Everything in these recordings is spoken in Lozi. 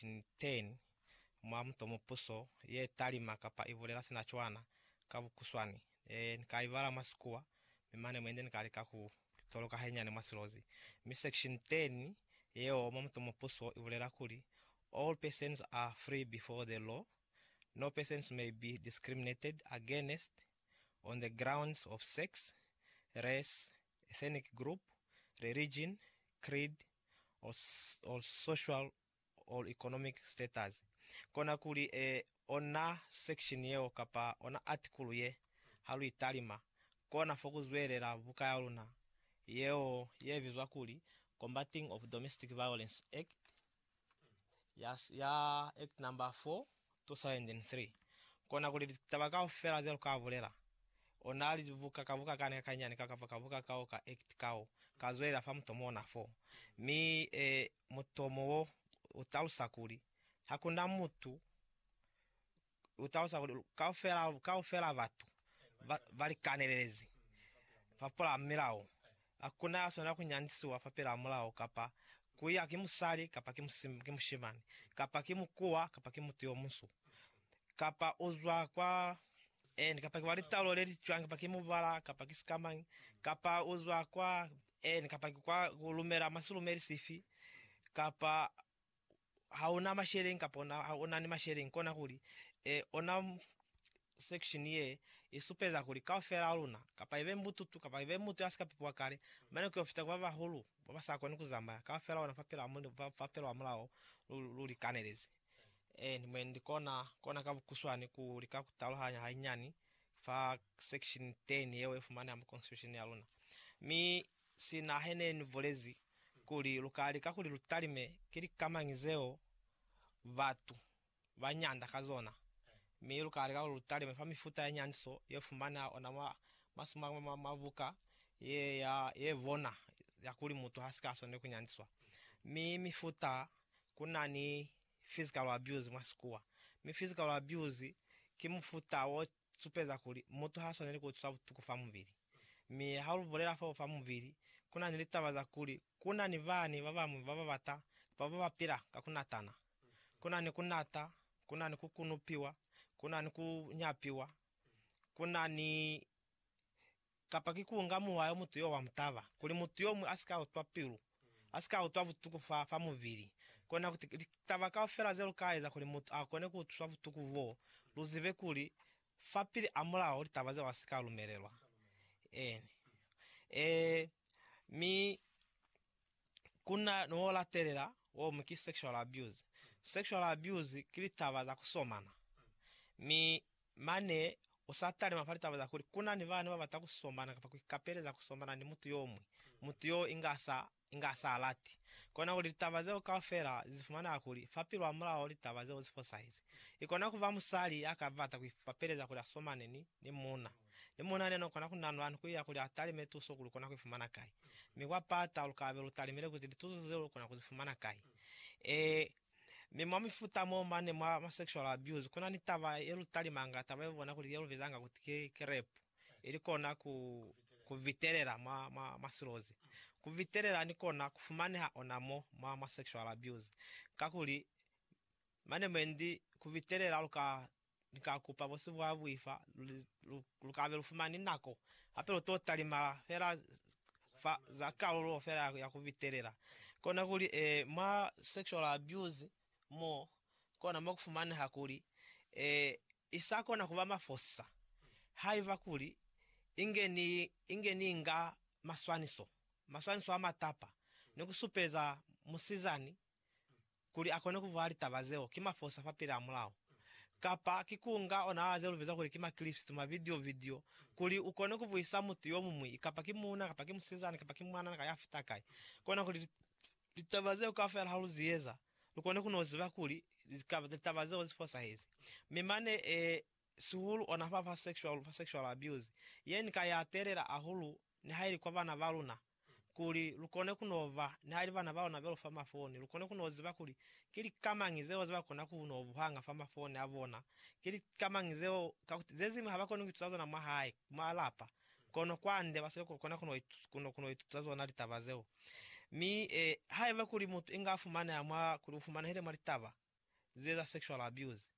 Niteñi, mwa mutomo puso ye talima kapa ibulela sina cwana ka bukuswani. Ne ni ka ibala mwa Sikuwa, mi mane mwendi ni ka lika ku toloka hainyiani mwa silozi. Mi section teñi yeo mwa mutomo puso ibulela kuli, All persons are free before the law. No persons may be discriminated against on the grounds of sex, race, ethnic group, religion, creed, or social or economic status, kona kuli e ona section yeo kapa ona article ye ha lu italima, kona fo ku zwelela buka ya luna yeo ye bizwa kuli Combating of Domestic Violence Act ya ya Act number 4 2003, kona kuli litaba kaufela ze lu ka bulela, ona libuka ka buka kani ka kanyani ka kapa ka buka kao ka act kao, ka zwelela fa mutomo ona fo, mi e mutomo wo u talusa kuli, Ha ku na mutu, u talusa kuli kaufela, kaufela batu ba, ba likanelelezi fapilaa milao. Ha ku na ya swanela ku nyandisiwa fapilaa mulao, kapa ku ya ki musali, kapa ki, ki mushimani, kapa ki mukuwa, kapa ki mutu yo munsu, kapa u zwa kwa eni, kapa ki wa litaulo le li cwañi, kapa ki mubala, kapa ki sikamañi, kapa u zwa kwa Eeni, kapa ki kwa ku lumela mwa silumeli sifi, kapa ha una masheleñi kapa una, ha una ni masheleñi, kona kuli, e, ona section ye i supeza kuli kaufela ha luna, kapa ibe mbututu, kapa ibe mutu ya si ka pipiwa kale, mane ku yo fita ku ba bahulu, ba ba sa koni ku zamaya, kaufela ona fapilwa ha Mulimu, fa, fapilwa ha mulao, lu, lu likanelezi. Eeni, mwendi kona, kona ka bukuswani ku lika ku taluhanya hainyani fa Section 10 yeo ifumaneha mu Constitution yaluna, mi sina hene ni bulezi kuli luka lika kuli lu talime ki lika mañi zeo batu ba nyanda ka zona, mi luka lika kuli lu talime fa mifuta ya nyandiso ye fumaneha ona mwa masuma mwa mwa buka ye ya ye bona ya kuli mutu ha si ka swaneli ku nyandiswa, mi mifuta kuna ni physical abuse mwa sikuwa, mi physical abuse ki mufuta wo supeza kuli mutu ha swaneli ku utwiswa butuku fa mubili. Mi ha lu bulela fo fa mubili, ku na ni litaba za kuli ku na ni bani ba bañwi ba ba bata kapa ba ba pila ka ku natana. Ku na ni ku nata, ku na ni ku kunupiwa, ku na ni ku nyapiwa, ku na ni Kapa ki ku nga muwa yo mutu yo wa mutaba, kuli mutu yo muñwi a si ka utwa pilu, a si ka utwa butuku fa, fa mubili. Kona kuti, litaba kaufela ze lu ka eza kuli mutu a kone ku utwiswa butuku boo, lu zibe kuli, fapili a Mulao, litaba zeo ha si ka lumelelwa. Eeni. Ee, mi ku na ni wo latelela, wo mu ki sexual abuse. Sexual abuse ki litaba za ku somana. Mi Mane u sa talima fa litaba za kuli ku na ni bana ba bata ku somana kapa ku ikapeleza ku somana ni mutu yo muñwi, mutu y'o inga sa, inga sa lati. Kona kuli litaba zeo kaufela li zifumanela kuli fa pilu hamulaho litaba zeo zi fosahize. I kona ku ba musali ya ka bata ku ikapeleza kuli a somane ni, ni muuna. Ni muuna yena n'o kona ku nanwa ni ku iya kuli a talime tuso kuli u kona ku i fumana kai. Mi kwa pata lu ka be lu talimile kuti lituso zeo lu kona ku zi fumana kai. Ee, Mi mwa mifuta mo mane mwa ma sexual abuse kuna ni taba ye lu talimanga, taba ye bona kuli ye lu bizanga kuti ki, ki rape, ili kona ku, ku vitelela mwa, mwa, mwa silozi. Ku vitelela ni kona ku fumaneha ona mo mwa ma sexual abuse, kakuli mane mwendi ku vitelela lu ka Ni ka kupa bosi bwa buifa luli lu, lu kabe lu fumani nako, hape lu to talimala fela fa za kalulo fela ya, ya ku bitelela. Kona kuli, eh, mwa sexual abuse mo, kona mo ku fumaneha kuli, eh, i sa kona kuba mafosisa haiba kuli inge ni, inge ni nga maswaniso, maswaniso a matapa, ni ku supeza musizani kuli a kone ku vwala litaba zeo ki mafosa fa pila hamulaho, kapa ki ku nga ona ze lu biza kuli ki ma-clips tu mavidio, video, kuli u kone ku vwisa mutu yo muñwi, kapa ki muuna, kapa ki musizana, kapa ki mwanana ka ya fita kai, kona kuli litaba zeo kaufela ha lu zi eza, lu kone ku n'o ziba kuli litaba zeo zi fosahezi. Mi mane, ee, sihulu ona fa, fa sexual, fa sexual abuse, ye ni ka ya telela hahulu nihaili kwa bana ba luna. kuli lukone kuno ba nihali bana balona belu fa mafoni, lukone kuno ziba kuli ki lika mañi zeo zeba kona kuno buhanga fa mafoni abona, ki lika mañi zeo, kakuti zezimwi haba koni kuituta zona mwahae, mwa lapa, kono kwande basweli kona kuno kuno kuno ituta zona litaba zeo. Mi, e, haiba kuli mutu inga afumaneha mwa, kuli ufumanehile mwa litaba, zieza sexual abuse,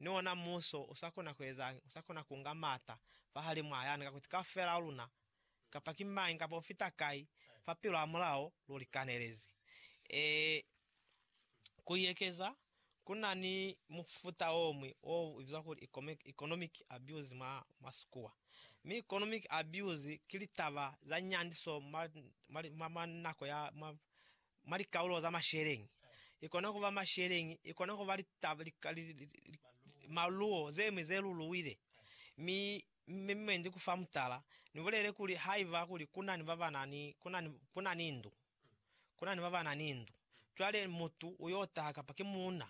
ni ona muso usakona kuezañi? Usakona kunga maata fahalimu a yani, kakuti kaufela a luna, kapa ki mañi kapa ufita kai, fa pilu hamulaho lu likanelezi. Ee, kuiekeza, kuna ni mufuta omwi o bizwa kuli economic abuse mwa Masikua. Mi economic abuse ki litaba za nyandiso mwa nako ya, mwa mwa likaulo za masheleñi, ikona kuba masheleñi, ikona kuba litaba, li, li, li, li, maluwo zemwi ze luluwile. Mi, mi mwendi ku fa mutala, ni bulele kuli, haiba kuli kunani babanani, kunani, kunani ndu, kunani babanani ndu, cwale mutu uyo taha, kapa ki muuna,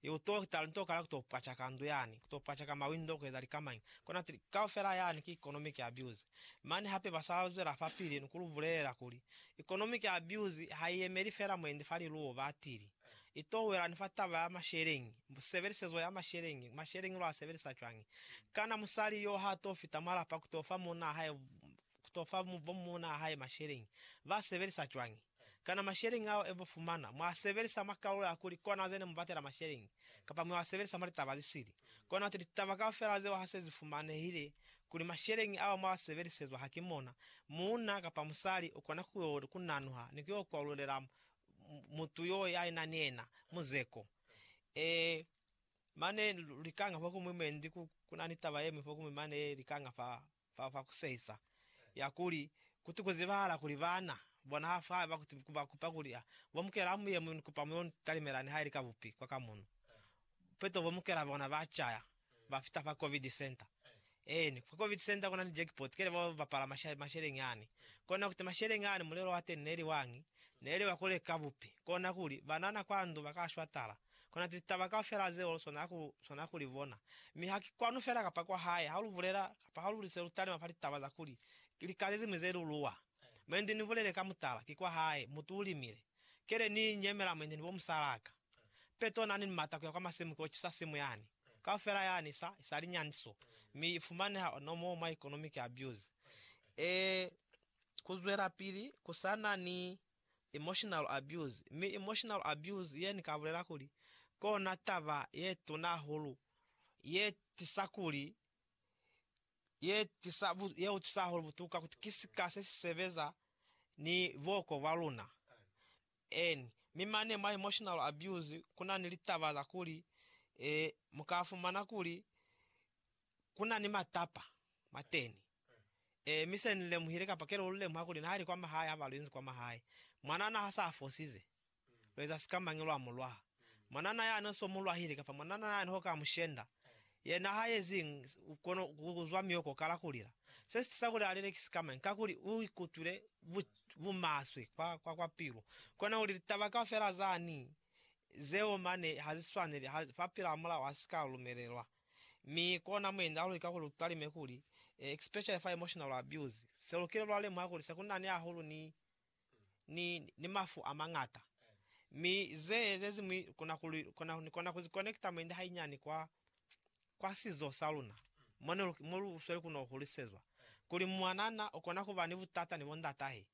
I u to kita linto kala ku to pwacaka ndu yani, ku to pwacaka mawindo, ku eza lika mañi. Kona tili, Kaufela yani ki economic abuse. Mane hape ba sa zwela fapili ni ku lu bulelela kuli, Economic abuse ha i yemeli fela mwendi fa liluwo. Ba tili, I to wela ni fa taba ya masheleñi, sebelisezo ya masheleñi, masheleñi lu a sebelisa cwañi. Kana musali yo ha to fita mwa lapa ku to fa muuna hae to fa bo muuna hae masheleñi, ba sebelisa cwañi? Kana masheleñi ao e bo fumana, mwa sebelisa mwa kalulo ya kuli kona ze ne mu batela masheleñi, kapa mwa sebelisa mwa litaba ze sili? Kona ti litaba kaufela zeo ha se zi fumanehile kuli masheleñi ao mwa sebelisezwa ha ki mona, muuna kapa musali u kona ku yo ku nanuha ni ku yo kwalulela mutu yo ya ina ni yena muzeko. Ee, mane likanga fokuñwi mwendi ku na ni taba ye ñwi fokuñwi mane likanga fa fa kwa ku sehisa, ya kuli, Kuti ku zibahala kuli baana bona ha fa haiba kuti ba kupa kuli ha bo mukela mu ye mu ni kupa mu yo ni talimela ni ha ili ka bupi kwa ka muno. Peto bo mukela bona ba caya, ba fita fa Covid Center. Eeni, kwa Covid Center ku na ni jackpot, kele bo bapala masha, masheleñi ani. Kona kuti masheleñi ani mulelo wa teni ne li wañi? Ne li wa ku leka bupi. Kona kuli, banana kwa ndu ba ka shwa tala. Kona litaba kaufela zeo lu swanela ku, swanela ku li bona. Mi ha ki kwanu fela kapa kwa hae, ha lu bulela, kapa ha lu li se lu talima fa litaba za kuli, ki lika ze ziñwi ze lu luwa. Mwendi ni bulele ka mutala, ki kwa hae, mutu u limile. Kele ni nyemela mwendi ni bo musalaka. Peto na ni mata kuya kwa masimu ki o cisa simu yani. Kaufela yani i sa, i sa li nyandiso. Mi i fumaneha ona moo mwa economic abuse. Ee, ku zwelapili ku sa na ni emotional abuse, mi emotional abuse ye ni ka bulela kuli kona taba ye tuna hahulu ye tisa kuli ye tisa ye utwisa hahulu butuka kuti ki sika se si sebeza ni buoko bwa luna. N. Mi mane mwa emotional abuse kuna ni litaba za kuli e, mu ka fumana kuli kuna ni matapa mateni. Ee, mi se Ni lemuhile, kapa kelo lu lemuha kuli nali kwa mahae haba lu inzi kwa mahae, mwanana ha sa fosize, lu eza sikamañi lwa mu lwaha? Mwanana yani so mu lwahile, kapa mwanana yani ho ka mu shenda, yena ha yeziñi kono ku kuzwa mioko kala ku lila. Se si tisa kuli a lile ki sikamañi? Kakuli u ikutwile bu, bu maswe kwa, kwa, kwa pilu. Kona kuli litaba kaufela zani zeo mane ha zi swaneli, ha, fa pila hamulaho ha si ka lumelelwa. Mi kona mwendi alulika kuli utalime kuli, e, especially fa emotional abuse, selukile lwa lemuha kuli sekunani hahulu ni, ni, ni mafu amangata. Mi ze, zeziñwi kona kuli, kona, nikona kuzi connecta mwendi hainyani kwa, kwa sizo sa luna, mo ne lu, mo lu sweli kuno hulisezwa, kuli mwanana ukona kuba ni butata ni bondatahe.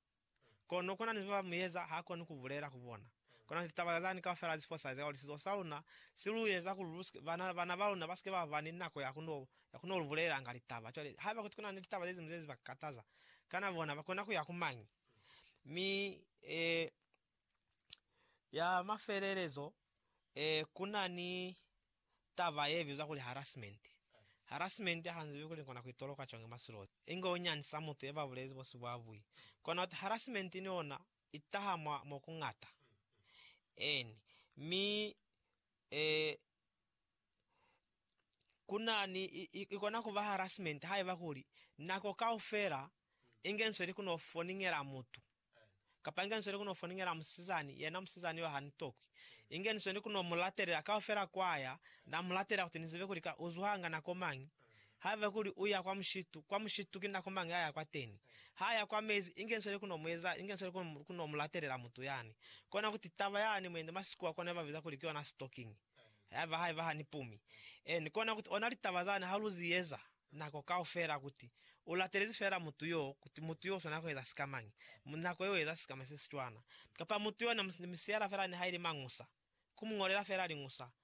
Kono kuna ni ziba ba mueza ha koni ku bulela ku bona. Kuna ni litaba zani kaufela ze fosahaliza kuli sizo sa luna si lu eza kuli lu sike, bana, bana ba luna ba sike ba ba ni nako ya ku no, ya ku no lu bulelanga litaba. Cwale, haiba kuti kuna ni litaba ze ziñwi ze ziba kataza, kana bona ba kona ku ya ku mañi? Mi, e, Ya mafelelezo, e, ku na ni taba ye bizwa kuli harassment. Harassment ha nzibi kuli kona ku itoloka cwañi mwa silozi, inge u nyandisa mutu ye ba bulezi bosi bwa bui. Kona uti harassment ni yona i taha mwa mo ku ñata. Eeni. Mi, e, ku na ni, i, i, i kona ku ba harassment haiba kuli nako kaufela inge nsweli ku no foniñela mutu Kapa inge nisweli kuno foningela musizani, yena musizani yo ha ni tokwi. Inge nisweli kuno mu latelela kaufela kwaya, na mu latelela kuti nizibe kuli ka uzwanga nako mañi. Haiba kuli uya kwa mushitu, kwa mushitu ki nako mañi aya kwateni? Ha ya kwa mezi, inge nisweli kuno mu eza, inge nisweli kuno, kuno mu latelela mutu yani. Kona kuti taba yani mwendi masikua kona iba biza kuli ki yona sitokingi. Haiba, haiba ha ni pumi. Eeni, kona kuti ona litaba zani ha lu zi eza. nako kaufela kuti u latelezi feela mutu yo, kuti mutu yo u swanela ku eza sika mañi, nako yeo u eza sika mañi se si cwana, kapa mutu yo na mu siela feela niha ili mañusa, ku mu ñolela feela liñusa,